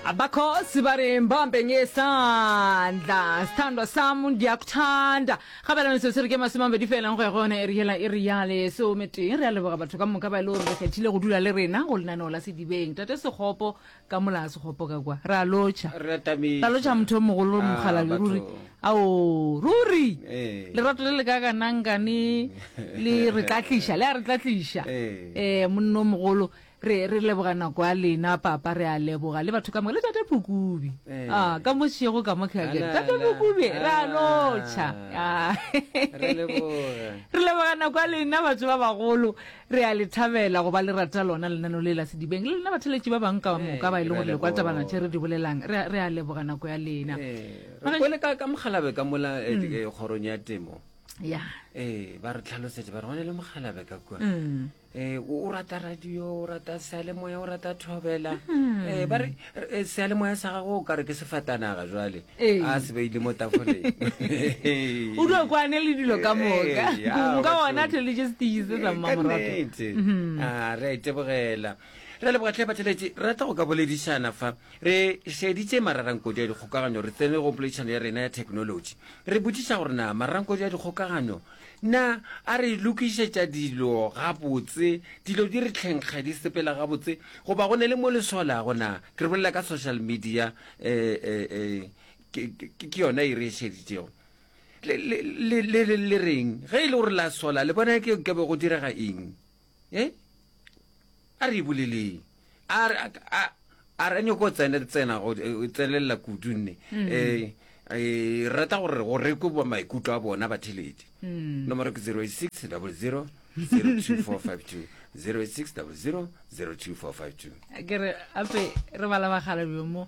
Abakhosi bari mbambe ngesandla sthandwa sam ndiyakuthanda gabela metsotso re ke masome a mabedi felang go ya go yona ere yela e re ya lesometee re a leboga batho ka moka ba e le gore re kgethile go dula le rena go lenaneo la sedibeng tate sekgopo ka molaa sekgopo ka kwa re a lotšha Re a thabisa. ra lotšha motho o mogolo Ah, mokgalale batho. ruri ao ruri Eh. lerato le le ka kanangkane le re tlatliša le a re tlatliša Eh. um monno mogolo Re, re leboga nako ya lena, Papa, re a leboga, le batho ka moka, le Tate Pukubi. Eh. Ah, ka mo šego ka mo ke a ke re, Ala, Tate ala, Pukubi, re a ala. lotšha. Ah. Re leboga. Re leboga nako ya lena, batho ba bagolo. Re a le thabela go ba le rata lona lenano le la Sedibeng, le lena batheletši ba bang ka Eh, moka ba e leng re a gore le kwa leboga. tabana tše re di bolelang. Re, a- re a leboga nako ya lena. Eh, Mara- re kwele ka ka mogalabe ka mola eh, di- eh, kgorong ya temo Ya. ee ba re tlhalosetše ba re go ne le mogalabe ka kua Mm. Eh, o o rata radio o rata sealemoya o rata thobela Mm. Eh, ba re eh, sealemoya sa gago o ka re ke sefatanaga jwale Ee. a se beile mo tafoleng o di okwane le dilo ka moka Eh, ya, nka batho. ona theoletse setee se sa mmamorato Kannete. Mhm. Ah, re a itebogela re lebogatlhe batheletše re rata go ka boledišana fa re šeditše mararankodi ya dikgokagano re tsene go poledišano ya rena ya thekenolotši re botšiša gore na mararankodi ya dikgokagano Na a re lokišetša dilo gabotse, dilo di re tlhenkga, di sepela gabotse, goba go ne le mo le solago? Na ke re bolela ka social media? Ke yona e re e šeditšego. Le reng ge e le gore la sola, le bona ke be go direga eng? e a re e boleleng a re a a re nyoko tsena tsena go e tsenelela kudu nne um e rata gore go rekwe ba maikutlo a bona ba thelete nomoro ke 086 00 02452 086 00 02452 ke re ape re bala bagala bjo mo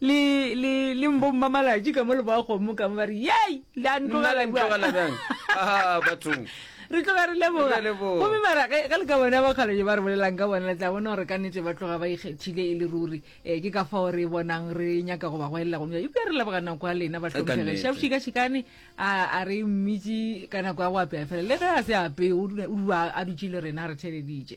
Le, le, le mbommamalatši ka mo le boa kgomo ka mo ba re, Yei, la Nna ntlogela le bjang? ntlogela bjang? Ah, bathong. Re tloga re leboga. Re a leboga. Gomme mara ge ge le ka bona bakgalo je ba re bolelang ka bona, le tla bona gore ka nnete ba tloga ba ikgethile e le ruri. Um ke ka fao re bonang re nyaka go ba goelela gomme bja- eupša re leboga nako ya lena bahlomphege nnete. šabošikašikane a a re mmitši ka nako ya go apea fela le ge a se apee o dula- o dua a dutše le rena a re theeleditše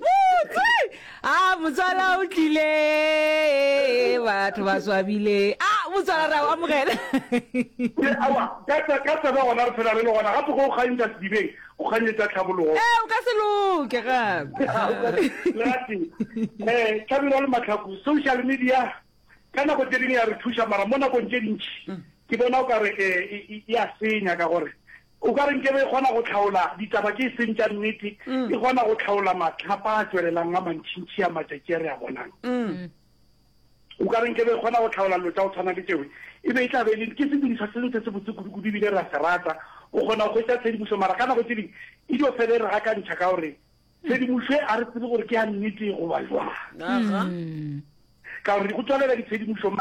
botse a motswala o tlile batho ba swabile a motswala ra o amogela ke awa ka tsa ka tsa ba gona re phela re le gona gape go o kgantša sedibeng go kganyetša tlhabologo e o ka se loke gape lati eh tlhabelo le matlhaku social media ka nako tse dingwe ya re thuša mara mo nakong tse dintši ke bona o ka re eh ya senya ka gore O ka re nke be e kgona go hlaola ditaba tše e seng tša nnete, e kgona go hlaola mahlapa a tšwelelang a mantšintši a matšatši a re a bonang. O ka re nke be e kgona go hlaola dilo tša go tshwana le tšeo, e be e tla be e le ke sedirišwa se ntshe se botse kudu-kudu e bile re a se rata. O kgona go hwetša tshedimošo mara ka nako tše ding e dio fela e re gakantšha ka gore tshedimošo e a re tsebe gore ke ya nnete goba jwang, ka gore go tswalela ditshedimošo.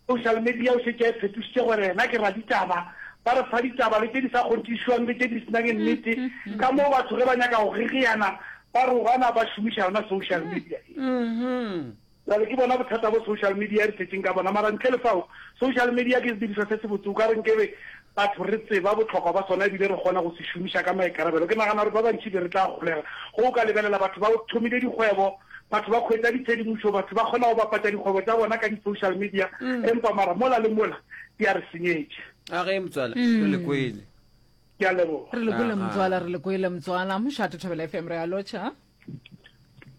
Social media o šetše a e phetošitše gore yena ke raditaba, ba re fa ditaba le tše di sa kgonthišwang le tše di se nang nnete, ka moo batho ge ba nyaka go gegeana ba rogana ba šomiša yona social media e. Bjale ke bona bothata bo social media e re tletšeng ka bona, mara ntle le fao social media ke sedirišwa se sebotse, o ka re nkebe Batho re tseba bohlokwa bja sona e bile re kgona go se šomiša ka maikarabelo. Ke nagana gore ba bantši be re tla golega go go ka lebelela batho ba thomile dikgwebo, batho ba kgwetsa ditshedimošo, batho ba kgona go bapatša dikgwebo tša bona ka di-social media, empa mara mola le mola di a re senyetša. A ge motswala re le kwele. Ke a leboga. Re le kwele motswala, re le kwele motswala. Mošate Thobela FM re a lotšha.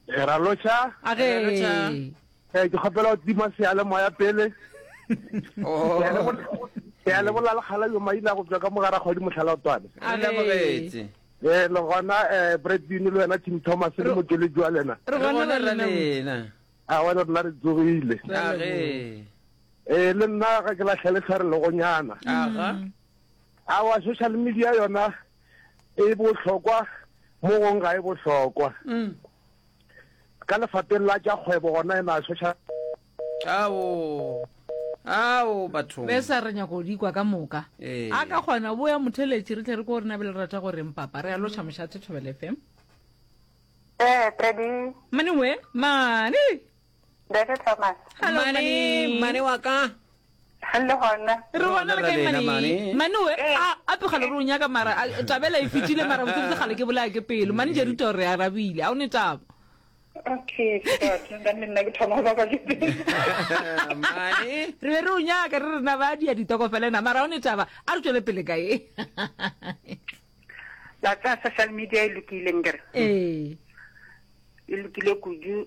ra loša age eh, ke kgopela go tima seyalemoya pele oh. ya le bola lekgala yo maile a go tswa ka mogara kgwadi motlhala o twane ee eh, le gona um eh, bredbin le wena tim thomas le motšele jwa lena a ah, wena rena re tsogile ee le nna ga ke latlhele tlhare legonyana a wa social media yona e bohlokwa mo gong ga e bohlokwa mm. ka lefateng la tša kgwebo gona e na social ao ao batho be sa re nyako di kwa ka moka ee. a ka kgona bo ya motheletši re tle re ko rena be le rata go reng papa re ya loša mošate thobele fm ee eh, tedi mane we mane Ndeke Thomas. Hello, Mane, Mane. Mane wa ka. Le gona. Re gona re kae Mane? Mane we, eh. a a tloga le ronya ka mara a tabela e fitile mara botse botse gale ke bolaya ke pelo. Mane je ruta re arabile. A o ne taba. Okay, ke nda nna ke thoma ba ba ke. Mane. Re re o nyaka re rena ba di a ditoko fela na mara o ne taba. A re tswele pele ka e. La tsa social media e lokile ngere. Eh. E lokile kudu.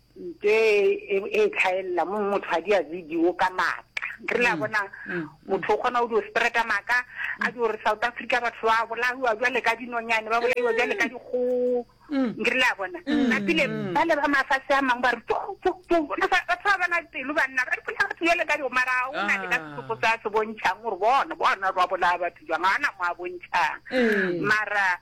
nto e e e tlhaelela mo motho a di a video ka maaka re la bona motho o kgona o di o spreada maaka a di gore south africa batho ba bolaiwa jwale ka dinonyane ba bolaiwa jwale ka dikgogo re la bona ka pele ba le ba mafatshe a mangwe ba re tso tso tso le fa batho ba bana pelo banna ba re pele batho jwale ka dikgogo mara o na le ka sesupo sa se bontšhang gore bona bona ba bolaya batho jwang ga na mo a bontšhang mara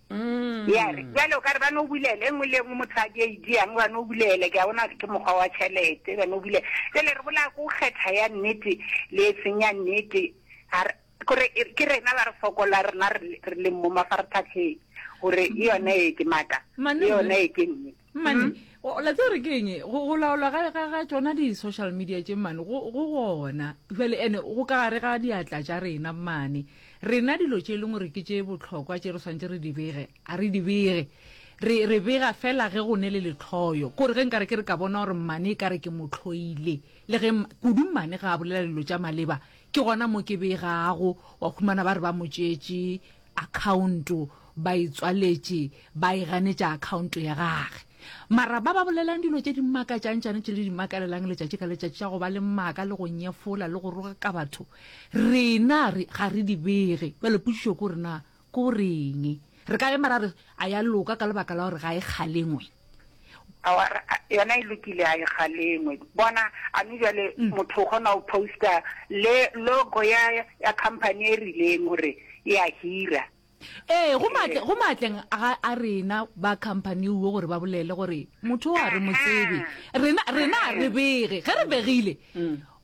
Mm. ya re jale o ka re ba no bulele e nngwe le e nngwe motho a di a idiang ba no bulele ke a bona ke mokgwa wa tšhelete ba no bulele jale re bolaya ko kgetha ya nnete le e seng ya nnete Ga re- kore e- ke rena ba re fokola rena re le- re leng mo mafarathatlheng gore e yone e ke maaka Mane- e yone e ke nnete mmane o la tsere ke eng go go laolwa ga ga ga tsona di social media tše mmane go go gona jwale ene go ka gare ga diatla tša rena mmane rena dilo tše e leng gore ke tše botlhokwa tše re swantse re di bege a re di bege re re bega fela ge go ne le letlhoyo kore ge nkare ke re ka bona gore mmane e kare ke motlhoile le ge kudu mmane ga a bolela dilo tša maleba ke gona mo ke begago wa khumana ba re ba motšetše akhaonto ba e tswaletše ba e ganetša akhaonto ya gage mara ba ba bolelang dilo tše di makatšang tšane tše le di makalelang letšatši ka letšatši tša go ba le maaka le go nyefola le go roga ka batho rena re ga re di bege bjale potšišo ko rena ko reng re ka ema ra re a ya loka ka lebaka la gore ga e kgalengwe Awara yona e lokile a e galengwe. Bona a me jwale motho o kgona go posta le logo ya ya company e rileng gore e a hira. Ee, go matle go matleng a a rena ba company uwe gore ba bolele gore motho o a re motsebe. Rena rena a re bege. Ge re begile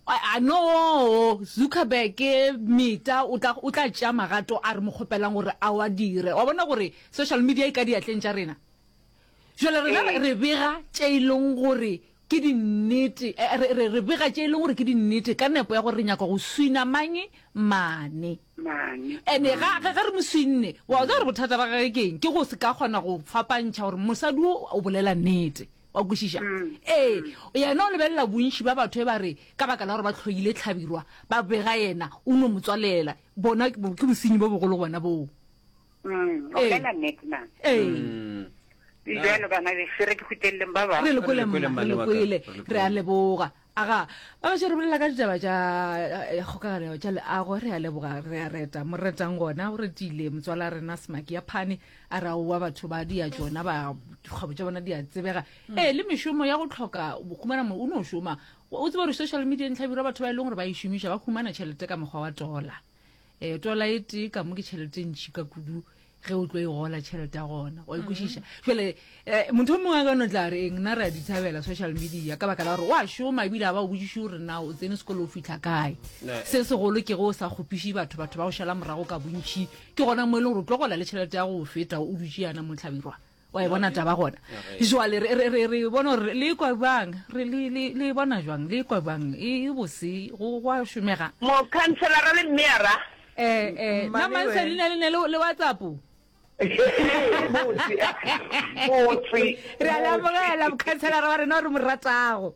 a no Zuckerberg Meta o tla o tla tšea magato a re mo kgopelang gore a wa dire. Wa bona gore social media e ka diatleng tša rena. jale rena re- re bega tše e leng gore ke dinnete eh, re- re re bega tše e leng gore ke dinnete ka nepo ya gore re nyaka go swina manye mane mane ene ga ga- ga re mo swinne wa tsa gore bothata ba gage keng ke go se ka kgona go fapantšha gore mosadi o o bolela nnete wa kwešiša ee yena o lebelela bontši ba batho e ba re ka baka la gore ba tlhoile tlhabirwa ba bega yena o no motswalela bona ke bo- ke bosenyi bo bogolo gona boo Mm, o Ee. bolela nnete na ee Mm. e bjalo bana beso re ke khuteleleng ba bangwe re le kwele Re le kwele, mma re mmane le wa ka. kwele Re le re a kwele. leboga aga ba gašo re bolela ka ditaba tša eh, kgokaganyo tša leago re a leboga re a reta mo retang gona o retile motswala rena semaki ya phane a re aowa batho ba dia tšona ba dikgwebo tša bona di a tsebega ee le mešomo ya go tlhoka bokhumana mo o no šoma o tseba gore social media ntlhabira batho ba e leng gore ba e šomiša ba humana tšhelete ka mokgwa wa tola um tola e tee ka mo ke tšhelete e ntšhi ka kudu ge o tlo e gola tšhelete ya gona wa ikwešiša jale um motho o mongwe a ka no tla re eng na re a dithabela social media ka baka la gore wa šoma ebile a ba o botsiše gore na o tsene sekolo o fitlha kae se segolo ke go o sa kgopiše batho batho ba go šala morago ka bontšhi ke gona mo e leng gore o tlo gola le tšhelete ya go feta o dutše yana motlhabirwa wa e bona taba gona jwale re- re re- re bona gore le ikwa bang re le- le le e bona jwang le ikwa bang e e bose go gwa šomega mokhanselara le mmeara um um nna Mmane mansa wena. leina le ne le le whatsapp motse motse re a le amogela mokhanselara wa rena o re mo ratago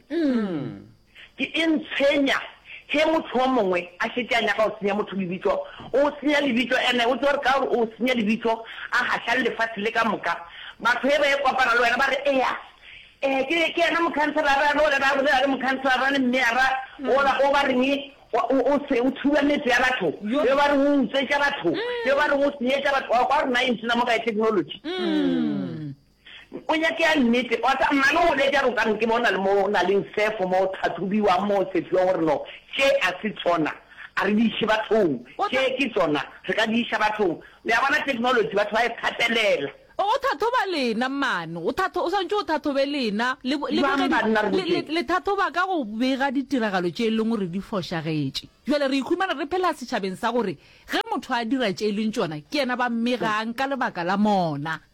Ke eng tshwenya ge mohlomongwe a šetše a nyaka go senya motho lebitso? O senya lebitso ene o tšo re ka gore o senya lebitso a gaša le lefase le ka moka. Batho ge ba e kopana le wena ba re, Ea, ee, ke ke yena mokhanselara re ole ra bolela le mokhanselara le mmeyara ola o ba reng o o se o thuba metse ya batho, yo ba reng o utswetša batho, yo ba reng o senyetša batho. Wa kwa gore na e ntsena mo kae technology? O nyake ya nnete. Wa tseba, mma le gona etša re o ka re ke bona le mo na leng sefo mo tlhathobiwang mo sefiwa gore no, tše a se tsona, a re di iše bathong. O Tše tla. ke tsona, re ka di iša bathong. Le a bona technology, batho ba e kgatelela. O o thathoba lena, mmane. O thatho, o swanetše o thathobe lena. Le bo, le Bjang boge di, banna re le, le, botšeng? le thathoba ka go bega ditiragalo tše e leng gore di fošagetše. Bjale re ikhumana re phela setšhabeng sa gore ge motho a dira tše e leng tšona, ke yena ba mmegang ka lebaka la mona.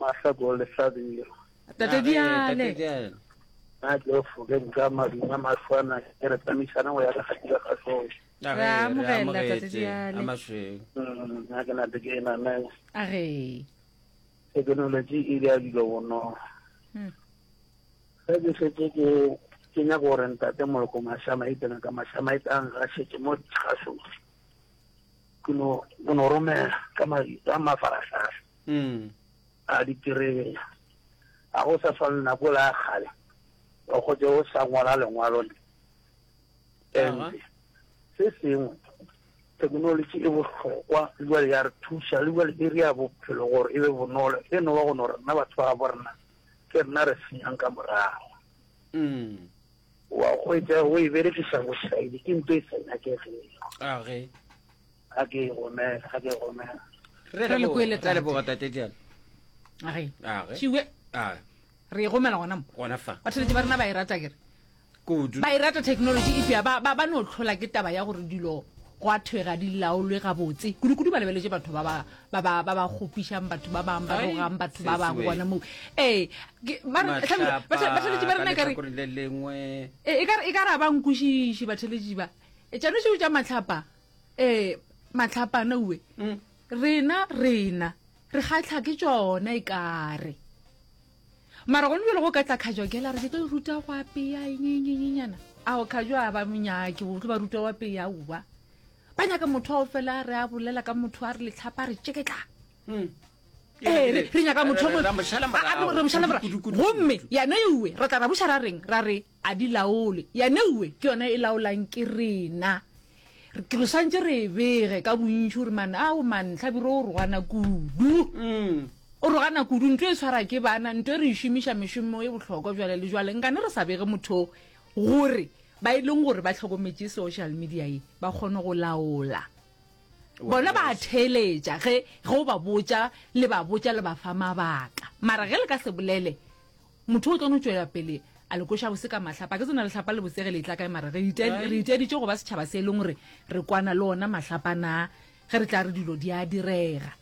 Masako le Sabiro. Tate Diale. Na ke o foke nka maduma maswana ke re tsamisana go ya ka kgatira ga sone. Re amogela Tate Diale. Mm, na ke na te ke na na. A re. Thekenoloji e ile ya dilo bonolo. Hmm. Ge ke setse ke ke nyaka gore ntate moloko mashama e tsena ka mashama e tlang ga setse mo tshasong ke no romela ka mafaratlhatlha A diterebe, ga go sa swana le nako ela ya kgale o gotše o sa ngwala lengwalo le ente. Se sengwe, thekenolotši e bohlokwa le bjale ya re thuša, le bjale e ria bophelo gore e be bonolo, e no ba go no rena batho ba gabo rena ke rena re senyang ka morago. Wa hwetša o e berekiša bošaedi ke nto e sa nyakegego. ga ke e romela ga ke e romela re Re le kwele, tate. leboga tate diana age Age. šiwe a re e gomela gona mo gona fa batheletše ba rena ba e rata kere kudu ba e rata technology e fea ba ba- ba no tlhola ke taba ya gore dilo go a thwe ga di laolwe gabotse kudu-kudu ba lebeletše batho ba ba- ba ba- ba ba kgopišang batho ba bangwe ba Ai, rogang batho ba bangwe sesiwe. gona moo ee ke- ba re- hlame- Mahlapa, bathe- batheletši ba rena ka e ka re lehlakoreng le lengwe e e ka re- e ka re a ba nkwešiše batheletši ba E tšano šeo tša matlhapa ee matlhapana uwe mm. rena rena re kgatlha ke tsona e kare mara gone bjelo go ka tla kgajokela re ke tlo ruta go apeya enyenyenyenyana ao kgajo a ba monyake o tlo ba ruta go apeya uwa ba nyaka motho ao fela re a bolela ka motho a re letlhapa re tšeketla mm. ee re nyaka motho re mošala mora gomme yane ewe ra tla ra buša ra reng ra re A di laole. Ya neue ke yona e laolang ke rena. Ke re swantše re e bege ka bontši gore man ao man hlabiro o rogana kudu. O rogana kudu. Nto e swara ke bana. Nto e re e šomiša mešomo e bohlokwa jwale le jwale. Nkane re sa bege motho gore ba e leng gore ba hlokometše social media ye ba kgone go laola. Bona ba a theeletša ge ge o ba botša le ba botša le ba fa mabaka. Mara ge le ka se bolele Motho o tlo no tšwela pele a le koša bose ka mahlapa. Ke tsona lehlapa le bosege le e tla kae mara re re iteaditše go ba setšhaba se e leng gore re kwana le ona mahlapa na ge re tla re dilo di a direga.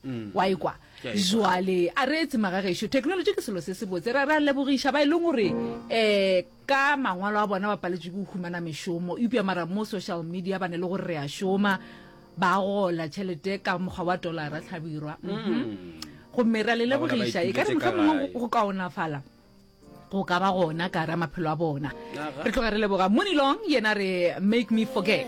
Mm. wa ikwa jwale a re etse magagešo technology ke selo se se botse ra ra lebogiša ba e leng gore um Ka mangwalo a bona ba paletšwe ke go humana mešomo, eupša mara mo social media ba ne le gore re a šoma, ba gola tšhelete ka mokgwa wa tolara hlabirwa. Mhm. Gomme re a le lebogiša, e ka re mohlomongwe go kaonafala go ka ba gona ka ra maphelo a bona. Re tloga re leboga Monilong, yena re make me forget.